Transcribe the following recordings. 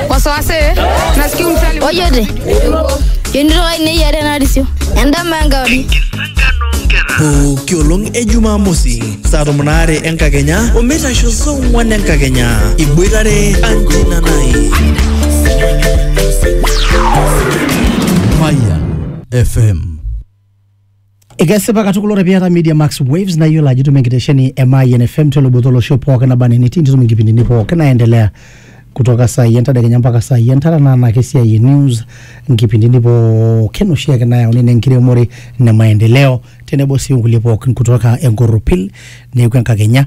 wasiwasi nasikia msali ojote yonitoka inei are narisio endama enkauri pooki olong e jumamosi saa tomon aare enkakenya omeitasho saa ong'wan enkakenya iboitare anjina nai Fire FM Ekesipa katukul ore piata Media Max Waves na iyiolo ajo itum enkitesheni e Mayian FM teloboto olosho pookin naba enaa enitii nitum inkipindini pookin naendelea kutoka saa hii entadekenya mpaka saa hii entara naa anake esiai e news nkipindini pookin oshiake nayauni nenkiremore ne maendeleo tenebo sii onkulie pookin kutoka enkorropil neeku enkakenya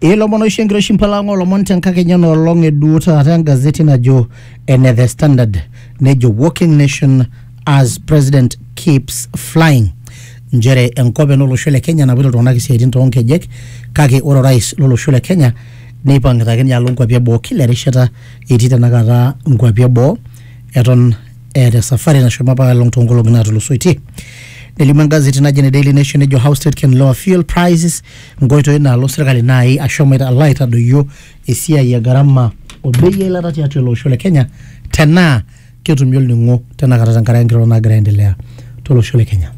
Ilomon oishu enkiroshi mpalang'o lomon tenkakenya nolong eduo taata engazeti najo ene The Standard nejo Walking Nation as President keeps flying nchere enkop ena olosho le Kenya napoito iltung'anak isiaitin toonkejek kake ore orais lolosho le Kenya neipang'ita ake ninye alo nkuapi eboo kila erishata etii tenakata nkuapi eboo eton eeta esafari nashomo apa along toonkolong'i naatulusoitie. Nelimu engazeti naji ene Daily Nation nejo how state can lower fuel prices nkoitoi naalo sirkali naai ashomo aita- alo aitadoyio esiai e gharama o bei eilata tiatua ele osho le Kenya tenaa ketumi olning'o tenakata tenkaraki nkirorot naagira aendelea tolosho le Kenya.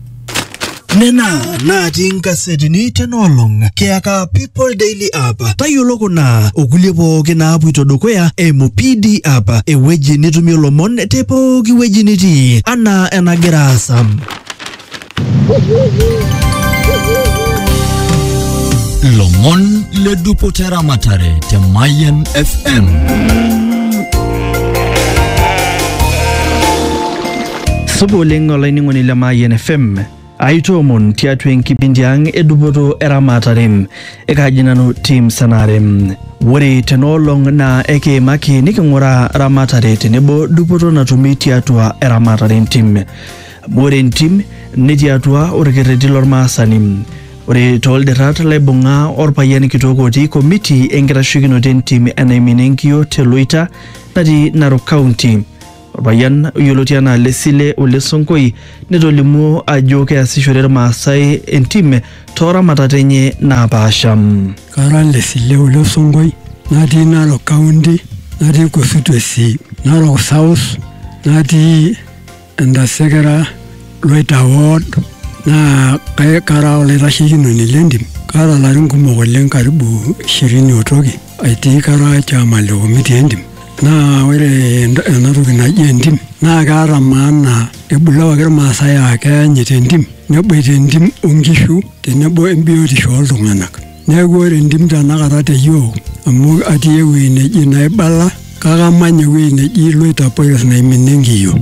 Nena natii inkasetini tena olong kiyaka People Daily App. Tayiolo kuna okulie pooki naapuito dukuya eimu PD App, ewueji nitumie lomon te pooki wueji nitii anaa enagira aasa. lomon le dupoto eramatare te Mayan fm supa oleng olainining'oni le Mayian FM aitoomon tiatua enkipindi ang edupoto eramatare ekaaji nanu tim sanare ore tenaolong naa ekiimaki niking'uraa ramatare tenebo dupoto natumi tiatua eramatare entim Ore entim netii atua orkerreti lormaasani. Ore tooldirrat laibung'a orpayian kitok otii komiti enkitashekinoto entim e Naimina Enkiyio te Loita natii Narok County. Orpayian oyioloti anaa Lesile Ole Sonkoi netolimuo ajo keasishore Irmaasai entim too ramatat enye naapaasha. Kara Lesile Ole Sonkoi natii Narok County natii constituency Narok South natii Entasekera Loita Ward naa kai- kara olaitashekinoni le ntim. Kaata larin kumok oleng karibu ishirini otoki aitii kara chairman le committee e ntim. Naa ore ent- ena toki naji entim naa keata maana ebulu apake ilmaasai aa keanyita entim neboita entim o nkishu tenebo embiotisho oo ltung'anak. Neaku ore entim tenakata te yiok amu atii ewueji neji Naibala kake amanya ewueji neji Loitapores naiminie enkiyio.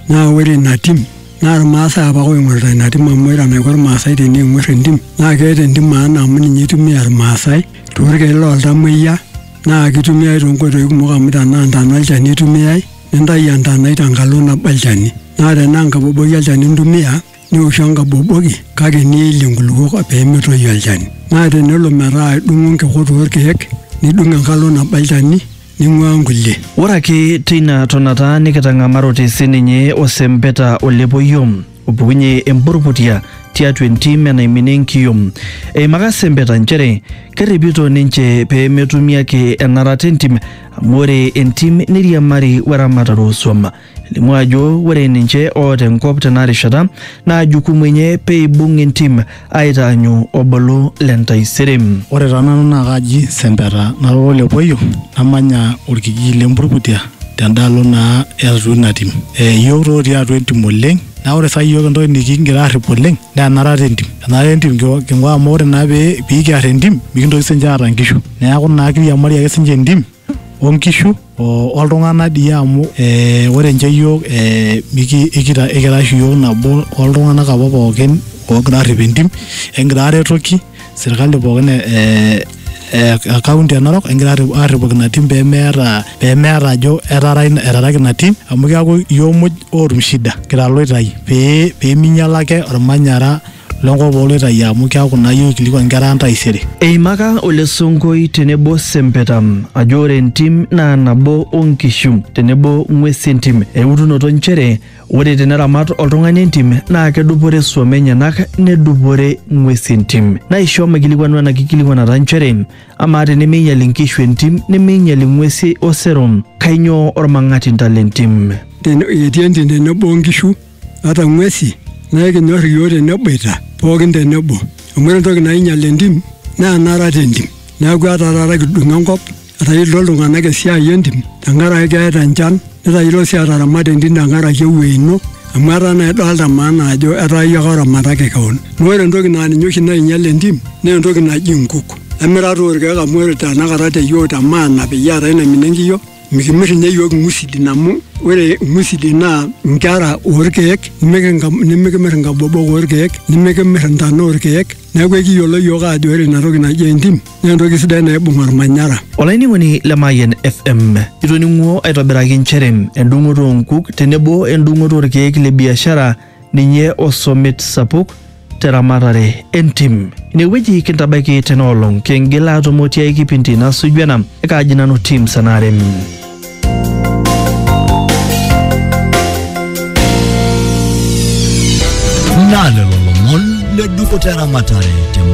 Naa ore ina tim naa Ilmaasai apake ooing'orita ina tim amu ore enaiko Ilmaasai teneing'orr entim naa keeta entim maana amu ninye eitumia Ilmaasai toorkiek loo ltamuoyia naa keitumiai too nkoitoi kumok amu tenaa intana olchani eitumia, nintayu entanai tenkalo nabo olchani. Naa tenaa enkaboboi olchani intumia nioshu enkaboboki kake niilie nkulupuok pee metoyu olchani. Naa tenelo metaa idung'o nkikot oo lkeek nidung enkalo nabo olchani ning'uaa nkulie. Ore ake teina tonata nikitang'amarote si ninye osempeta o lepoiyo opukunye emburrputia tiatua entim enaiminie enkiyom. Eimaka sempeta nchere kerripito ninche pee metumi ake enarata entim amu ore entim neiriamari we ramatare oo suam. Elimu ajo ore ninche oota enkop tenarishata naa jukumu enye pee eibung entim aitaanyu obolo le ntaisere. Ore taa nanu naa kaaji Sempeta nara Olepoyo namanya olkijiji le Mburkutia tendaalo naa e atua ina tim. Iyiok taa otii atua entim oleng naa ore saa hii iyiok entoki nikigira aarrip oleng naa enarata entim. Enarata entim king'uaa amu ore naa pee kiarr entim mikintoki siininche aata nkishu. Neeku naa kiriamari ake siininche entim o nkishu o oltung'anak dii amu ee ore nche iyiook ee miki ikita ikira oshi iyiook nabo oltung'anak apa pookin oogira aarrip entim ekigira aaretoki sirkali pookin ee e county e Narok ekigira aarripoki ina tim pemeeta pemeeta ajo etaara etaraki ina tim amu keeku iyiook muj ootum shida kira iloitai pee peminyiala ake ormanyara. lenkop ooloitayu amu keaku naa iyie oikilikuan nkera ang taisere. Eimaka Ole Sonkoi tenebo Sempeta ajo ore entim naa nabo o nkishu tenebo ng'uesi entim eutunoto nchere ore teneramat oltung'ani entim naa kedupore suom enyenak nedupore ng'uesi entim. Naisho maikilikuanu ena kikilikuanata nchere amaa tenemeinyal inkishu entim nemeinyal ing'uesi osero kainyoo olmang'atinta lentim? Etii entim tenebo o nkishu. ata ng'uesi naa ekinyor iyiook teneboita pookin tenebo amu ore entoki nainyial entim naa enara tentim neeku etaa taata kidung enkop etayiolito iltung'anak esiai entim tenkaraki keeta enchan netayiolo sii ataramata entim tenkaraki ewuei ino amu etaa naa idolta maana ajo etaa iyie ake oramataki kewon naa ore entoki naa ninye oshi nainyial entim naa entoki naji inkuk emirata orkeek amu ore tanakata te yiok te maana peyie eetae naimina enkiyio. Mikimir ninye iyiook ing'usidin amu ore ing'usidin naa nkera oorkeek nimikimir inkabobok oorkeek nimikimir intana oorkeek neeku ekiyiolo iyiook aajo ore ina toki naji entim naa entoki sidai naibung olmanyara. Olainining'oni le Mayian FM, itoning'uo aitobiraki nchere endung'oto oo nkuk tenebo endung'oto oorkeek le biashara ninye osomit sapuk teramatare entim. Inewueji kintabaiki tena olong kingil aatumo tiai kipindi nasuju ena ekaaji nanu Tim Sanarem. Naa lelo lomon le dupoto eramatare te